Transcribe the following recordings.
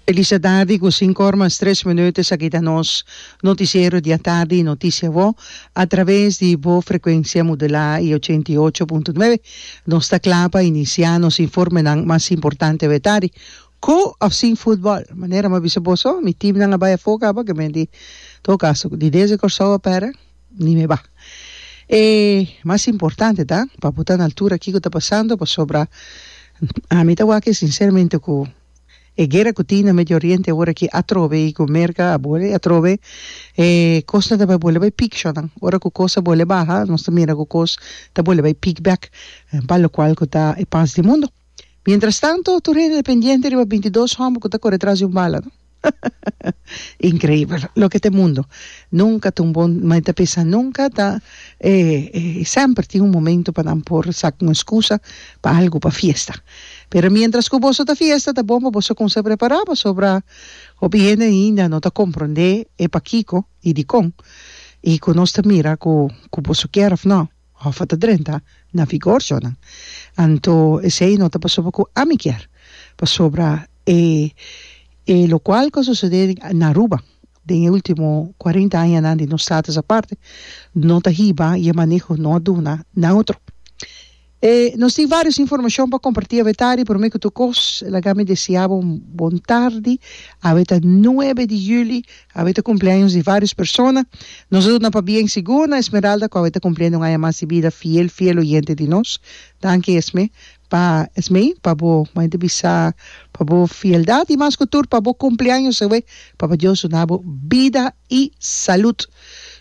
Elisa Dadi cu cinco or mas tres minuut esaki ta nos noticiero di atardi y noticia bo a traves di bo frecuencia modelaa y ochenta y ocho punto nueve. Nos ta cla pa inicia nos informenan mas importante awe tardi, cu of sin football. Manera mi a bisa boso mi teamnan a bay afoga aba, ke men di todo caso di desde Corsou a pera. Ni me ba. E mas importante ta pa bo ta na altura kiko ta pasando pasobra ami ta wak e sinceramente ku e guera ku tin na Medio Oriente ora ki atrobe i ku merka a bole atrobe e kosnan ta bai bole bai pik shornan ora ku kos a bole baha nos ta mira ku kos ta bole bai pik bek pa lokual ku ta e pas di mundo. Mientras tanto tur hende pendiente riba binti dos homber cu ta core tras di un bala no increibel loke ta e mundo nunca ta un bon m'a ta pensa nunca ta e semper tin un momento pa nan por saca un excusa pa algo pa fiesta pero mientras cu boso ta fiesta ta bon pa boso cuminsa prepara pasobra hopi hende ainda no ta comprende e pakico y dicon y cu nos ta mira cu boso kier of no òf a ta drenta na vigor djònan. Anto esei no ta pasobra ku ami kier, pasobra e e lokual ku a sosodé na Aruba den e último kuarenta añanan di nos status aparte no ta hiba i e maneho no a duna na otro. E nos tin vários informashon pa kompartí awe tardi. Promé ku tur kos, laga mi deseá bo un bon tardi. Awe ta nuebe di juli, Awe ta cumpleaños di varios persona. Nos a duna pabia en sigur na Esmeralda cu awe ta cumpliendo un aña mas di bida, fiel fiel oyente di nos. Danki Esme pa Esmé pa bo mai di bisa pa bo fieldad y mas cu tur pa bo cumpleaños awe. Papa Dios duna bo bida y salud.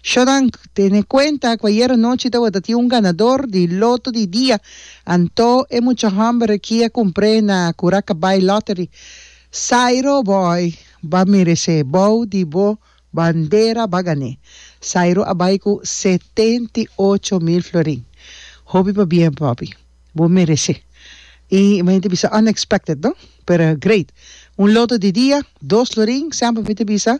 Shonan tene cuenta cu ayer anochi tabata tin un ganador di loto di dia anto e mucha homber aki a cumpre na Curaca Buy Lottery. Sairo boy Ba meresé bou di bo bandera ba gané. Sairo a bai ku setenta i ocho mil florin. Hopi pa bien papi. Bo meresé. I mi henter bisa unexpected no? Pero great. Un loto di dia, dos florin, semper mi ta bisa,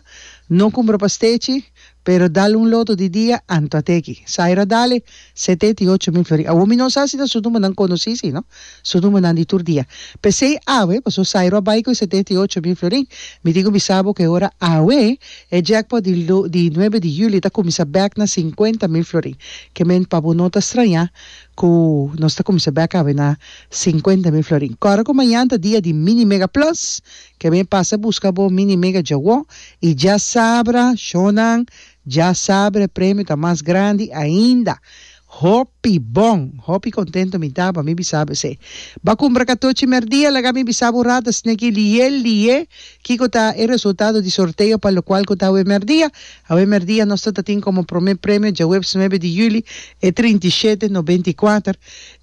no kumbra pa stechi, Pero dal un loto di dia anto a teki. Sairo a dale setenta i ocho mil flori. Awor mi no sa si ta su numbernan konosí, si no su numbernan di tur dia. P'esei awe, pasobra Sairo a bai ku e setenta i ocho mil florin, mi tin ku bisa bo ku e ora awe e jackpot di di nuebe di julio ta kuminsá bèk na sinkuenta mil florin. Kemen pa bo no ta strañá ku nos ta kuminsá bèk awe na sinkuenta mil florin. Kòrda ku mañan ta dia di Mini Mega Plus Ke mi pasa buska bo mi ni mega djawó i dja sabra shownan dja sabra e premio ta mas grandi ainda hopi bon hopi kontento mi ta pa mi bisa bo esei ba kumbra katochi merdia laga mi bisa bo rata sneki liye liye kiko ta e resultado di sorteo pa lokual ku ta awe merdia awe merdia nos ta ta tin komo prome premio dja huebs nuebe di juli e trinta i shete nobenta i kuater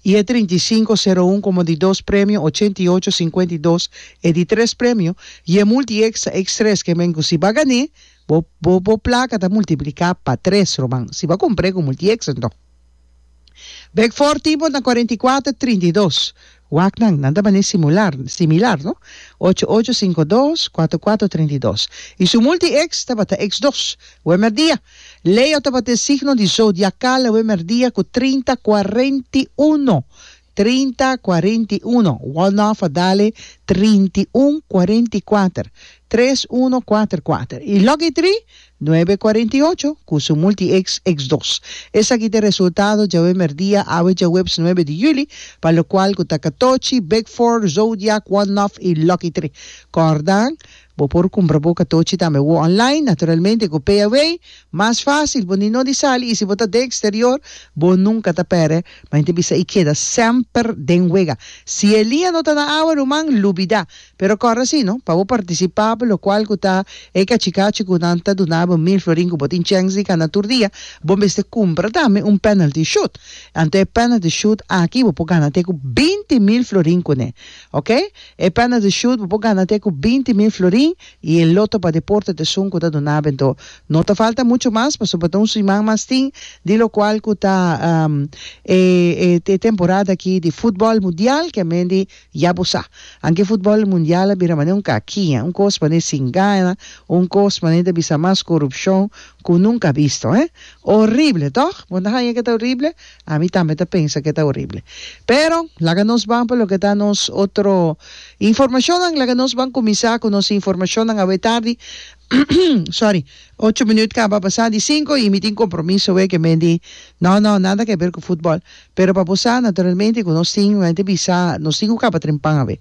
i e trinta i sinku sero un komo di dos premio ochenta i ocho sinkuenta i dos E di tres premio y e multi extra ex tres ke men ku si ba gané bo bo bo plaka ta multipliká pa tres ruman si ba kumpré ku multi extra enton bek for tipo na cuarenta y cuater trinta y dos wak nan nan ta bané simular similar no ocho ocho cinco dos cuatro cuatro treinta y dos y su multi ex tabata ex dos wemer dia Leo tabata e signo di zodiacal wemer dia ku trinta cuarenta y uno trinta cuarenta y uno Walnoff a dale trinta y un cuarenta y cuater tres uno cuater cuater y Lucky Three nuebe cuarenta y ocho cu su multi X X dos. Esaki ta e resultado djawe merdia awe djaweps nuebe di juli pa locual cu ta Catochi, Big Four, Zodiac, Walnoff y Lucky Three. Cordan Bo por kumpra bo katochi tambe wòrd online, naturalmente ku payaway, mas fásil, bo ni no di sali i si bo ta den eksterior bo nunka ta pèrdè, ma henter bisa i keda semper den wega. Si e liña no ta na awa ruman, lubidá, pero kòrda si no, pa bo partisipá pa lokual ku ta e kachikachi ku nan ta duna bo mil florin ku bo tin chèns di gana tur dia, bo mester kumpra tambe un penalty shoot. Anto e penalty shoot aki bo por gana te ku binti mil florin kuné. Ok, e penalty shoot bo por gana te cu binti mil florin y e loto pa deporte te esun cu ta duna bento. No ta falta mucho mas pasobra ta un siman mas tin di locual cu ta e e temporada aki di futbol mundial que mendi ya bo sa. Anke futbol mundial a bira mane un cakiña, un cos mane sin gana, un cos mane ta bisa mas corupcion cu nunca bisto, eh. Horrible, toch? Bo no ta haña que ta horrible? Ami tambe ta pensa ke ta horible. Pero, laga nos ban pa loke ta nos otro informashonnan. Laga nos ban kuminsá ku nos informashonnan awe tardi. Sòri, ocho minüt kaba pasá di sinku i mi tin kompromiso awe ku men di No, no, nada ke ber ku futbòl. Pero pa bo sa, naturalmente, ku nos tin, mi a inta bisa, nos tin ku kaba trin pan awe.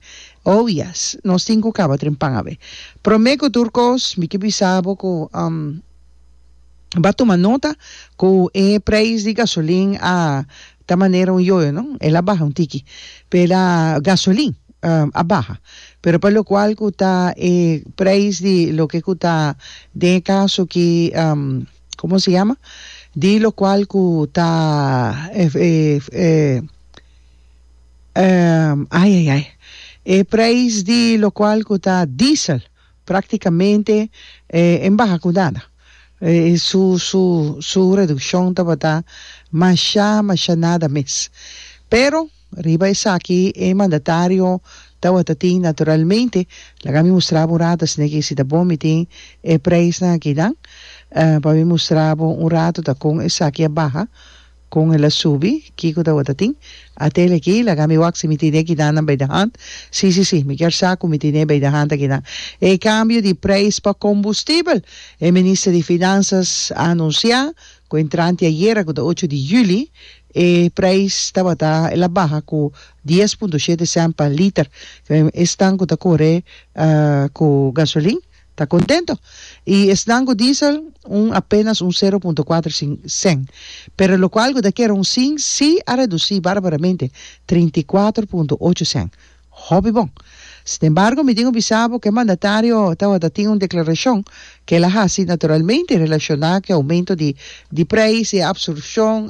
Oh, yes, nos tin ku kaba trin pan awe. Promé ku tur kos, mi ke bisa bo ku, um. Ba tuma nota ku e preis di gasolin a ta manera un yoyo no, el a baha un tiki, pela gasolin a baha pero pa lokual ku ta e preis di loke ku ta den e kaso ki komo se yama di lokual ku ta ayayay e preis di lokual ku ta diesel. Práktikamente e baha ku nada. Su redukshon tabata mashá, mashá nada mes. Pero riba esaki e mandatario tabata tin naturalmente, laga mi mustra bo un ratu asina ke si ta bon mi tin e preisnan akinan pa mi mustra bo un ratu ta kon esaki a baha. Kon el a subi? Kiko tabata tin? Atel aki, laga mi wak si mi tine e kidannan bay de hant. Si, si, si, mi kier sa ku mi tine bay de hant e kidan. E kambio di preis pa kombustibel. E minister di Finansas a anunsiá ku entrante ayera ku ta ocho di juli e preis tabata el a baha ku dies punto shete sènt pa liter. Esnan ku ta kore ku gasolin. ta contento y esnan cu diesel un apenas un sero punto cuater cen, pero locual cu ta keronsin si a reduci barbaramente, trinta i kuater punto ocho cen. Hopi bon. Sinembargo mi tin cu bisa bo cu e mandatario tawata tin un declaracion cu el a haci naturalmente relaciona cu e aumento di di prijs y e absorpcion,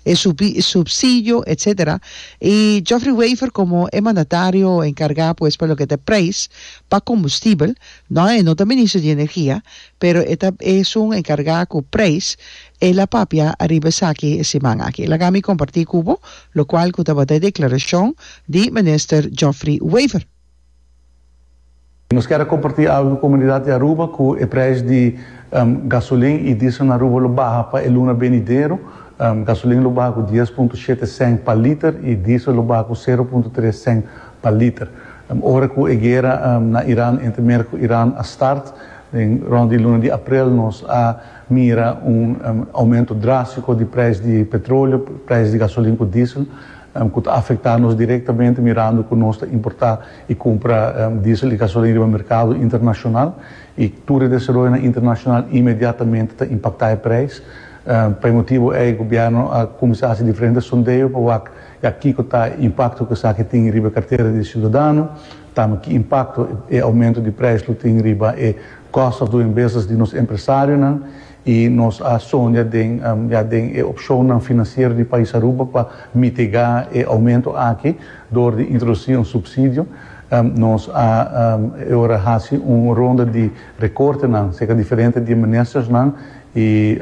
e subsidio, etc. Y Geoffrey Wever como e mandatario encarga pues pa loke ta prijs, Pa kombustibel, nò e no ta minister di energia, pero e ta esun enkargá ku preis, el a papia ariba esaki e siman aki. Laga mi kompartí ku bo lokual ku tabata e deklarashon di Minister Geoffrey Wever. Nos kier a kompartí algu ku komunidat di Aruba ku e preis di gasolin i diesel na Aruba lo baha pa e luna benidero. Gasolin lo baha ku dies punto shete sènt pa liter i diesel lo baha ku sero punto tres sènt pa liter. Ora ku e guera na Iran entre Merk ku Iran a start den rond di luna di aprel nos a mira un oumento drastiko di preis di petroleo, preis di gasolin ku diesel ku ta afekta nos direktamente mirando ku nos ta importa i kumpra diesel i gasolin riba merkado internashonal i tur e desaroyonan internashonal inmediatamente ta impaktá e preis. Pa e motibu ei gobièrnu a kuminsá hasi diferente sondeo pa wak Ya kiko ta e impakto ku esaki tin riba e kartera di siudadano? Tambe ki impakto e oumento di preis lo tin riba e kost òf doen business di nos empresarionan? I nos a soña den ya den e opshonnan finansiero di pais Aruba pa mitigá e oumento aki dor di introdusí un supsidio. Nos a e ora hasi un ronda di rekortenan serka diferente di e ministersnan Y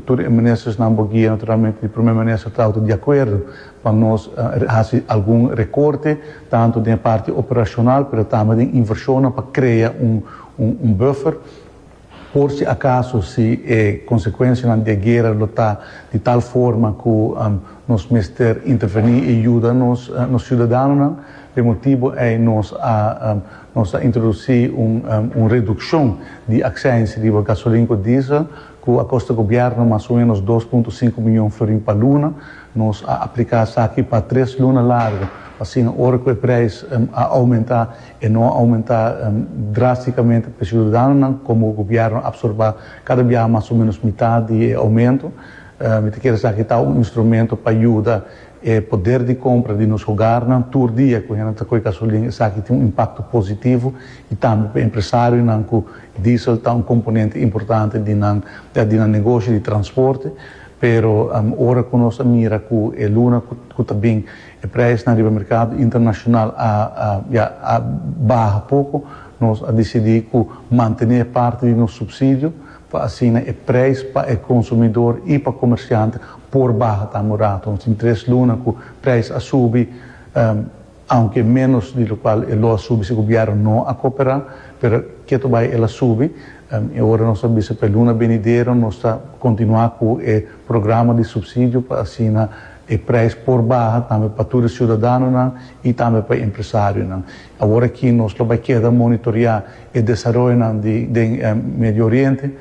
tur e ministersnan bo guia naturalmente di Primer Minister ta auto di acuerdo pa nos haci algun recorte tanto den e parti operacional pero tambe den inversionnan pa crea un buffer por si acaso si e consecuencianan di e guera lo ta di tal forma cu nos mester interveni y yuda nos ciudadanonan. P'e motibo ey nos a Nos ta introdusí un redukshon di aksèns riba gasolin ku diesel ku a kosta gobièrnu mas o ménos dos punto sinku miyon florin pa luna. Nos a apliká esaki pa tres luna largu, asina ora ku e preis a oumentá, e no a oumentá drástikamente pa siudadanonan komo gobièrnu a absorbá kada biaha mas o ménos mitat di e oumentu. Mi ta kere esaki ta un instrumentu pa yuda E poder di compra di nos hogarnan tur dia cu hende ta coe gasolin esaki tin un impacto positivo y tambe pa empresarionan cu diesel ta un componente importante di nan di nan negoshi di transporte pero ora cu nos a mira cu e luna cu ta bin e prijsnan riba mercado internacional a ya a baha poco nos a decidi cu mantene parte di nos subsidio pa asina e prijs pa e konsumidor i pa komersiant por baha ta un rato, sin tres luna ku prijs a subi, aunke ménos di lokual e lo a subi si gobièrnu no a koperá, pero ketu bai el a subi, i ora nos ta bisa pa e luna benidero nos ta kontinuá ku e programa di supsidio pa asina e prijs por baha tambe pa tur e siudadanonan i tambe pa e empresarionan. Awor aki nos lo bai keda monitorea e desaroyonan di den Medio Oriente.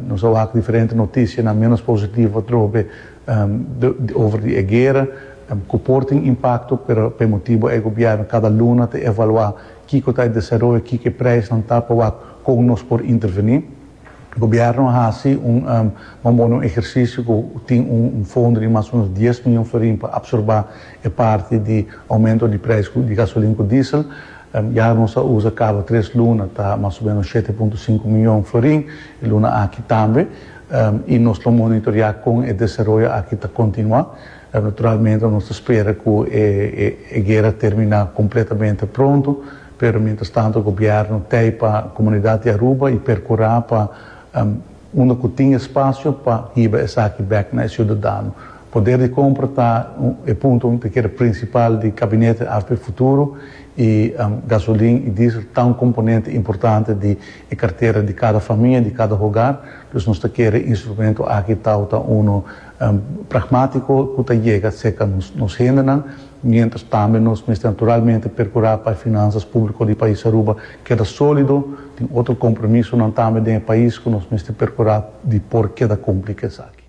Nos a wak diferente notisianan menos positivo atrobe di over di e guera ku por tin impakto, pero pa e motibu ei Gobièrnu kada luna ta evaluá kiko ta e desaroyo, kiko e preisnan ta pa wak kon nos por intervení. Gobièrnu a hasi un mamona un ehersisio ku tin un fondo di mas o menos dies mion florin pa apsorbá e parti di oumento di preis di gasolin ku diesel. Ya nos a usa kaba tres luna ta mas o menos shete punto sinku mion florin e luna aki tambe i nos lo monitoriá kon e desaroyo aki ta kontinuá. Naturalmente nos ta spera ku e guera terminá kompletamente pronto. Pero mientras tanto gobierno tei pa comunidad di Aruba y percura pa unda cu tin espacio pa hiba esaki bek na e ciudadano. Poder di compra ta e punto ta keda principal di Gabinete after e futuro y gasolin y diesel ta un componente importante di e cartera di cada famia, di cada hogar, dus nos ta kere e instrumento aki tau ta uno pragmatico cu ta yega cerca nos hendenan. mientras tambe nos mester naturalmente percura pa e finanzas publico di pais Aruba keda solido, tin otro compromisonan tambe den e pais cu nos mester percura di por keda cumpli cu esaki.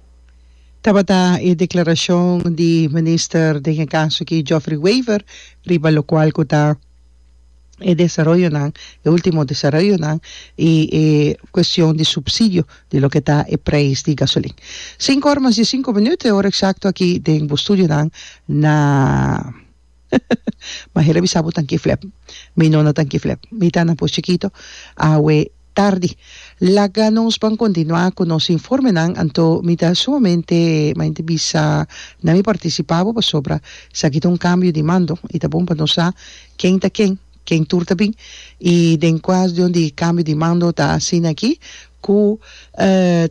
Tabata e declaracion di Minister den e caso aki Geoffrey Wever riba locual cu ta. e desaroyonan, e ultimo desaroyonan y e cuestion di subsidio di loke ta e prijs di gasolin. Sinku ora mas diesinku minuut e ora exacto aki den bo studionan na Maher a bisa bo tanki flep mi no na tanki flep mi ta na pos chikito awe. Tardi. Laga nos ban continua cu nos informenan anto mi ta sumamente maente bisa na mi participa bo pasobra esaki ta un cambio di mando y ta bon pa nos sa ken ta ken, ken tur ta bin y den cua dion di e cambio di mando ta asina aki cu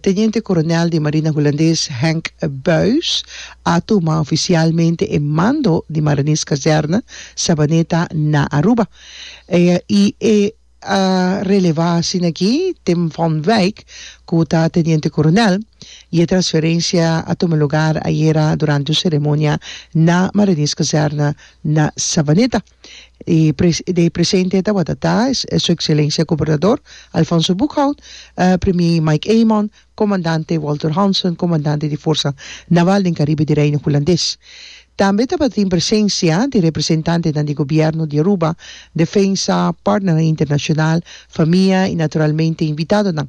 Teniente Coronel di Marina Hulandes Henk Buys a tuma oficialmente e mando di Mariniskazerne Sabaneta na Aruba y e a relevá asina aki Tim van Wyk, ku ta teniente koronel, i e transferensia a tuma lugar ayera durante un seremonia na Marinierskazerne na Savaneta. E de presente tabata ta Su Ekselensia Gobernador Alfonso Boekhout, Premier Mike Eman, Comandante Walter Hansen, comandante di forsa naval den Caribe di Reino Hulandes. Tambe tabatin presencia di representantenan di gobierno di Aruba, defensa, partnernan internacional, famia y naturalmente invitadonan.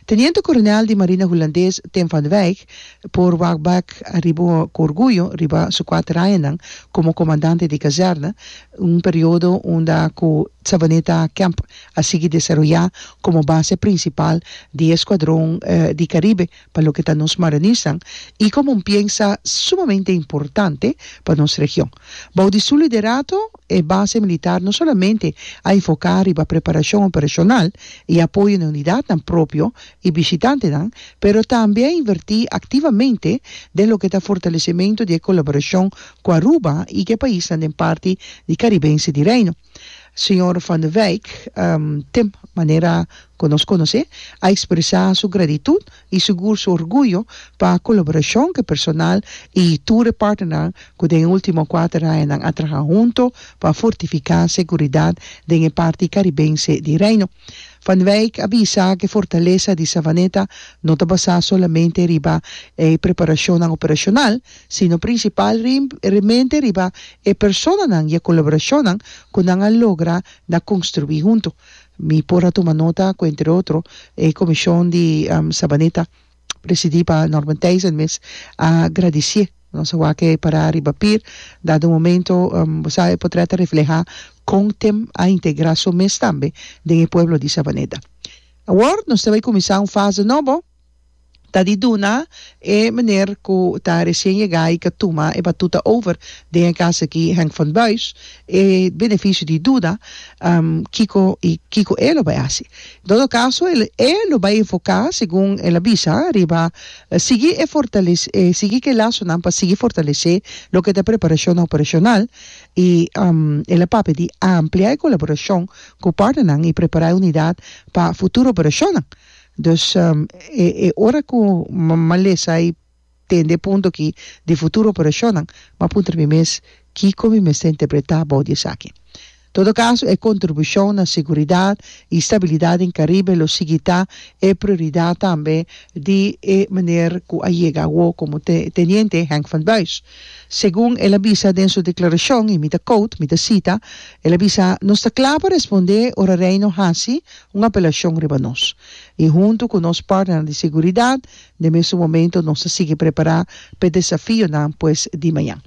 Teniente Coronel di Marina Hulandes Tim van Wijk por wak bek ariba cu orguyo riba su cuat rayanan como comandante di kazerne, un periodo unda cu Savaneta Camp a sigui desaroyá komo base prinsipal di e skuadron di Karibe pa loke ta nos Maranisnan i komo un piensa sumamente importante pa nos region. Bou di su liderato, e base militar no solamente a enfoká riba preparashon operashonal i apoyo na unidatnan propio i bishitantenan, pero tambe a invertí aktivamente den loke ta fortalesimentu di e kolaborashon ku Aruba i ku e paisnan den parti di Karibense di Reino. Señor Van de Wijk, tem manera cu nos conoce, a expresa su gratitud y sugur su orguyo pa colaboracion cu e personal y tur e partnernan cu den e ultimo cuater añanan a traha hunto pa fortifica seguridad den e parti caribense di Reino. Van de Wijk a bisa cu e fortaleza di Savaneta no ta basa solamente riba e preparacionnan operacional, sino prinsipal rimente riba e personanan i e kolaborashonnan ku nan a logra na konstruí huntu. Mi por a tuma nota ku entre otro e komishon di Sabaneta presidí pa Norman Thijssen mes a gradisié nos a wak pará riba pir dado momento bo sa e potrèt a reflehá kon tem a integrá su mes tambe den e pueblo di Sabaneta. Awor nos ta bai kuminsá un fase nobo. ta di duna e meneer ku ta resien yega i ka tuma e batuta over den e kas aki, Henk van Buis, e benefisio di duda kiko i kiko e lo bai hasi. En todo kaso e lo bai enfoká, segun el a bisa, riba sigui e fortalesé sigui ku e lasonan pa sigui fortalesé loke ta preparashon operashonal i el a papia di amplia e kolaborashon ku partnernan i prepará e unidat pa futuro operashonnan. Dus e ora ku Malesa i tende e punto aki di futuro operashonnan, m'a puntra mi mes kiko mi mester interpretá abou di esaki. Todo kaso, e kontribushon na seguridat i stabilidat den Karibe lo sigui ta e prioridat tambe di e meneer ku a yega awor komo Teniente Henk van Buys. Segun el a bisa den su deklarashon, i mi ta quote, mi ta sita, el a bisa, Nos ta kla pa respondé ora Reino hasi un apelashon riba nos, i huntu ku nos partnernan di seguridat, den mesun momento nos ta sigui prepará pa e desafionan pues di maña.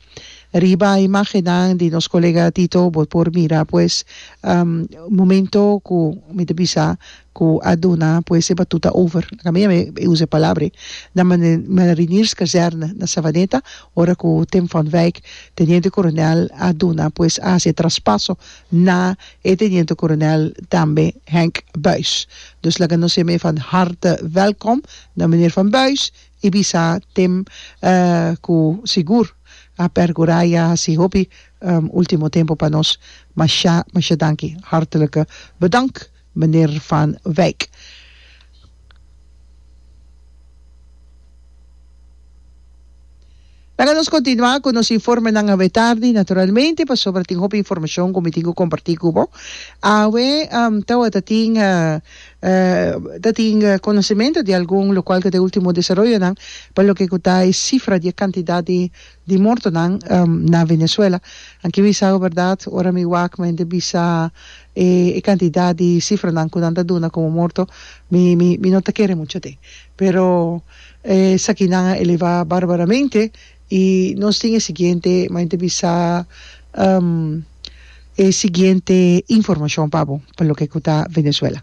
Riba e imágennan di nos kolega Tito bo por mira pues momento ku mi ta bisa ku a duna pues e batuta over, laga mi awor e usa e palabra, na Marinierskazerne na Savaneta, ora ku Tim van Wyk, Teniente Coronel, a duna pues a hasi e traspaso na e Teniente Coronel tambe Henk Buys. Dus laga nos e mei van harte welkom na Meneer Van Buys y bisa tem cu sigur a pergura y a haci hopi ultimo tempo pa nos. Masha masha danki. Hartelijke bedank. Meneer Van Wyk. Laga nos continua cu nos informenan awe tardi, naturalmente, pasobra tin hopi informacion cu mi tin cu comparti cu bo. Awe tawata tin ta tin conocimento di algun locual cu ta e ultimo desaroyonan pa loke cu ta e cifra di e cantidad di di mortonan na Venezuela. Nan kibi sa awe berdad ora mi wak mi henter bisa e cantidad di cifranan cu nan ta duna como morto mi mi mi no ta kere mucho den pero esakinan a eleva barbaramente y nos tin e siguiente mi henter bisa e siguiente informacion pa bo pa loke cu ta Venezuela.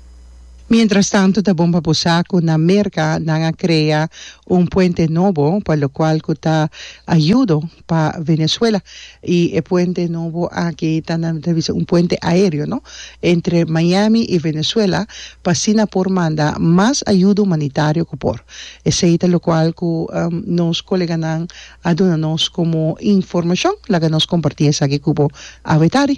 Mientrastantu ta bon pa bo sa cu na Merca nan a crea un puente nobo pa locual cu ta ayudo pa Venezuela y e puente nobo aki ta nan ta bisa un puente aereo no entre Miami y Venezuela pa asina por manda mas ayudo humanitario cu por. Esey ta locual cu nos coleganan a duna nos como informacion laga nos comparti esaki cu bo awe tardi.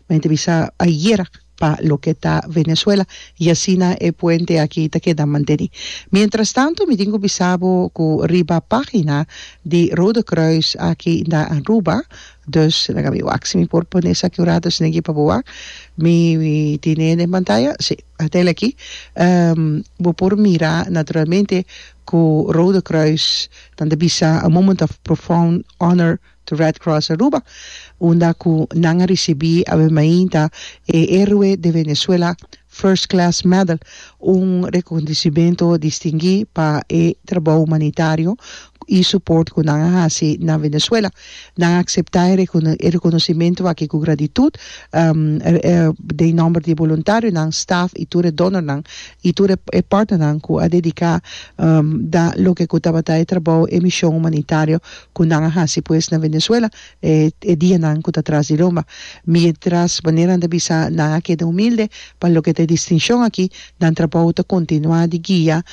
Mi a entrevista ayer pa loke ta Venezuela y asina e puente aki ta keda manteni. Mientras tanto mi tin cu bisa bo cu riba pagina di Rode Kruis aki na Aruba, dus nan a wak si mi por pone esaki un rato si nan ke pa bo wak, mi tine den pantaya, si, a tel aki, bo por mira naturalmente cu Rode Kruis nan ta bisa a moment of profound honor to Red Cross Aruba, unda cu nan a ricibi awe mainta e Heroe de Venezuela First Class Medal, un reconocimento distingui pa e trabou humanitario y support cu nan a haci na Venezuela. Nan a acepta e reconocimento aki cu gratitud den nomber di e boluntarionan, staff y tur e donornan y tur e partnernan cu a dedica da loke cu tabata e trabou, e mision humanitario Cu nan a haci pues na Venezuela e e dianan cu ta tras di loma? Mientras manera nan ta bisa nan a keda humilde pa loke ta e distincion aki, nan trabou ta continua di guia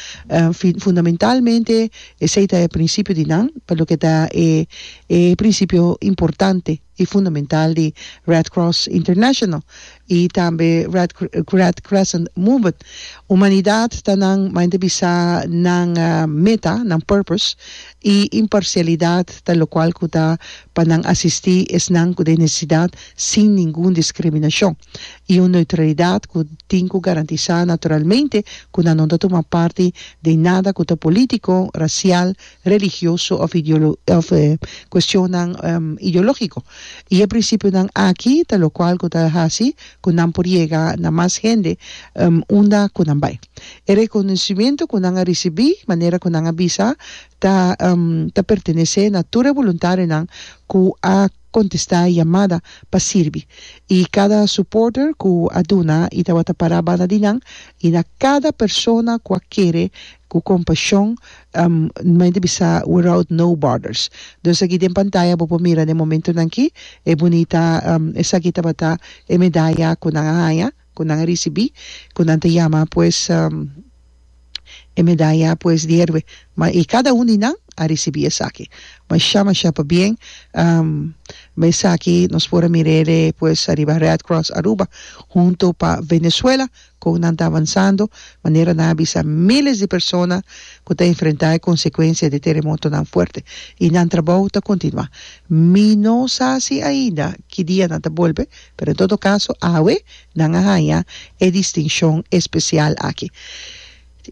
fin fundamentalmente esey ta e principio di nan pa loke ta e e principio importante. y fundamental di Red Cross International y tambe Red Crescent Movement. Humanidad ta nan mainta bisa nan meta, nan purpose, y imparcialidad ta locual cu ta pa nan asisti esnan cu den necesidad sin ningun discriminacion, y un neutralidad cu tin cu garantisa naturalmente cu nanon ta tuma parti den nada cu ta politico, racial, religioso of cuestionnan ideologico. Y e principionan aki ta locual cu ta haci cu nan por yega na mas hende unda cu nan bay. E reconocimiento cu nan a ricibi, manera cu nan a bisa, ta ta pertenece na tur e voluntarionan cu a contesta yamada pa sirbi y cada supporter cu a duna y tabata para banda di nan y na cada persona cu a kere cu compasion mente bisa without no borders dus aki den pantaya bo por mira den momentonan aki e bunita esaki tabata e medaya cu nan a haya. ku nan a risibí, ku nan ta yama pues e medaya pues di héroe, ma i kada un di nan a risibí esaki. Mashá mashá pabien, mesaki nos por a mira ele pues ariba Red Cross Aruba huntu pa Venezuela kon nan ta avansando, manera nan a bisa míles di persona ku ta enfrentá e konsekuensia di teremotonan fuerte i nan trabou ta kontinuá. Mi no sa si ainda ki dia nan ta bolbe. Pero en todo caso awe nan a haña e distincion especial aki.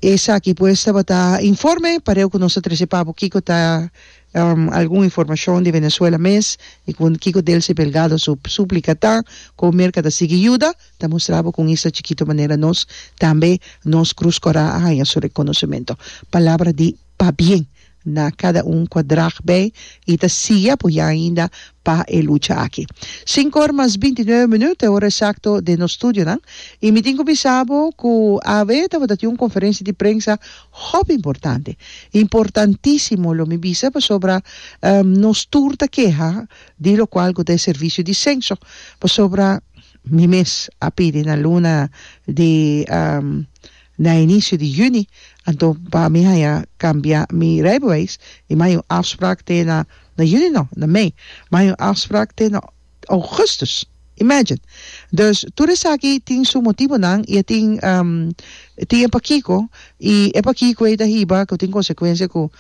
Esaki pues tabata informe, pareu cu nos ta trece pa bo kico ta algun informacion di Venezuela mes y cu kico Delcy Belgado su suplica ta, con Merca ta sigui yuda, ta mustra bo cu un isla chikito manera nos tambe nos Cruz Cora a haña su reconocimento. Palabra di pabien na cada un cua drag bay y ta siya por ya ainda pa e lucha aki. Cinco or mas binti nuebe minuut e ora exacto den nos studionan y mi tin cu bisa bo cu AB tabata tin un conferencia di prensa hopi importante. Importantisimo lo mi bisa pasobra nos tur ta keha di locual cu ta e servicio di censo pasobra mi mes a pidi na luna di Na inicio di juni, anto pa mi haña cambia mi rijbewijs y mi haña un afspraak te na, na juni no, na mei, mi haña un afspraak te na augustus. Imagine! Dus tur esaki tin su motibonan y a tin tin e pakico y e pakico ei ta hiba cu tin consecuencia cu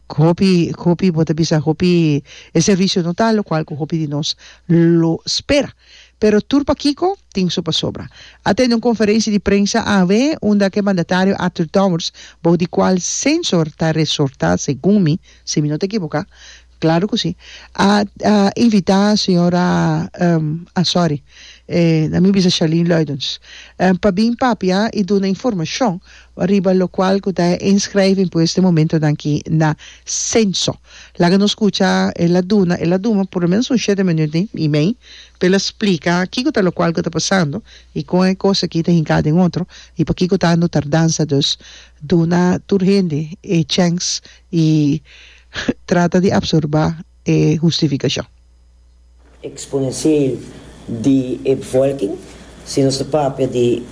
Cu hopi, cu hopi bo ta bisa, hopi e servicio no ta locual cu hopi di nos lo spera. Pero tur pakico tin su pasobra. A tende un conferenci di prensa awe unda cu e mandatario Arthur Dowers, bao di cual Sensor ta resorta segun mi, si mi no ta ekiboca, claro cu si, a invita señora, ah sorry, eh na mi bisa Charlene Luidens, pa bin papia y duna informacion. pa riba locual cu ta e inschrijving p'o este momentonan aki na Censo. Laga nos scucha el a duna, el a duma por lo menos un shete minuut den email p'el a splica kico ta locual cu ta pasando y con e cos aki ta hinca den otro y pakico ta ando tardanza. Dus duna tur hende e chance y trata di absorba e hustificacion. exponencieel di e bevolking. Si nos ta papia di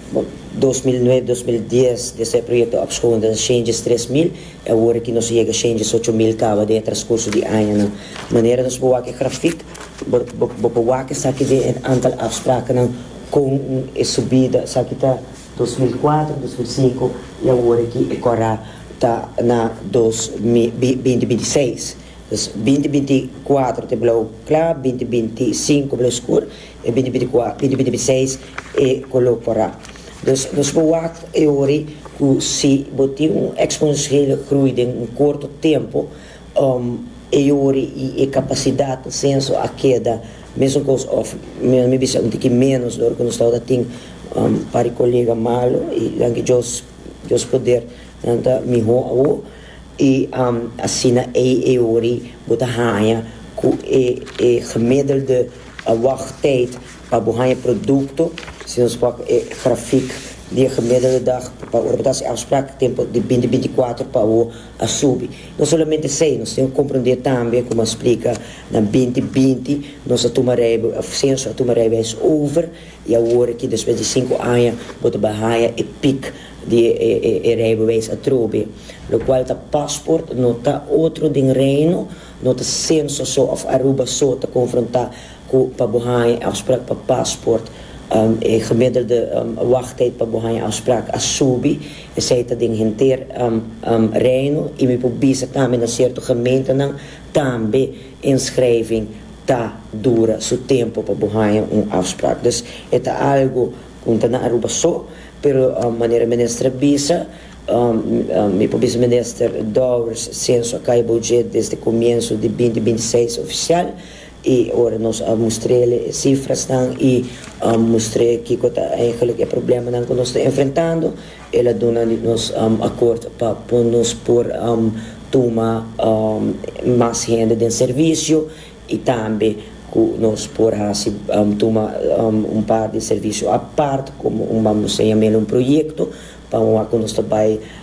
dos mil nuebe, dos mil dies di esei proyecto ap schoon den shenges tres mil y awor aki nos a yega shenges ocho mil caba den e transcurso di añanan. Manera nos por wak e grafiek bo bo por wak esaki den e antal afsprakennan con e subida esaki ta dos mil cuatro, dos mil cinco y awor aki e cora ta na dos mi beinti beinti seis. Pues binti binti kuatro te blau kla, binti binti sinku blau skur, e binti binti kua binti binti binti seis e koló korá. Pues nos por wak e hori ku si bo tin un eksponensiële grui den un korto tempu, um e hori i e kapasidat pa senso a keda mesun kos òf mi a bisa un tiki ménos di hora ku nos tabata tin um pari kolega malu i nan ke djos djos poder nan ta mihó awor. I asina ei e ori bo ta haña ku e e gemiddelde wagtijd pa bo haña e produkto, si nos wak e grafik di e gemiddelde dag pa ora bo ta hasi afsprak, e tempu di binti binti kuater pa awo a subi. No solamente esei, nos tin ku komprondé tambe, komo a splika, na binti binti nos a tuma rijbe señor a tuma rijbeis over i awor aki despues di sinku aña bo ta bai haña e pik. di e rijbewijs atrobe, lokual ta pasport no ta otro den Reino, no ta senso so òf Aruba so ta konfrontá ku pa bo haña e afsprak pa pasport, e gemiddelde wachttyd pa bo haña afsprak a subi, esei ta den henter Reino, i mi por bisa tambe na sierto gemeentenan tambe inschrijving ta dura su tempo pa bo haña un afsprak. Dus e ta algu Un ta na Aruba so, pero manera minister a bisa, mi por bisa minister Dowers senso a kai bojé desde comienso di binti binti seis oficial y ora nos a mustrele e cifrasnan y mustr'é kico ta eigenlijk e problemanan cu nos ta enfrentando, el a duna di nos akkoord pa nos por tuma mas hende den servicio. y tambe cu nos por haci tuma un par di servicio apart como un bambuseña mel un proyecto pa un wak cu nos ta bay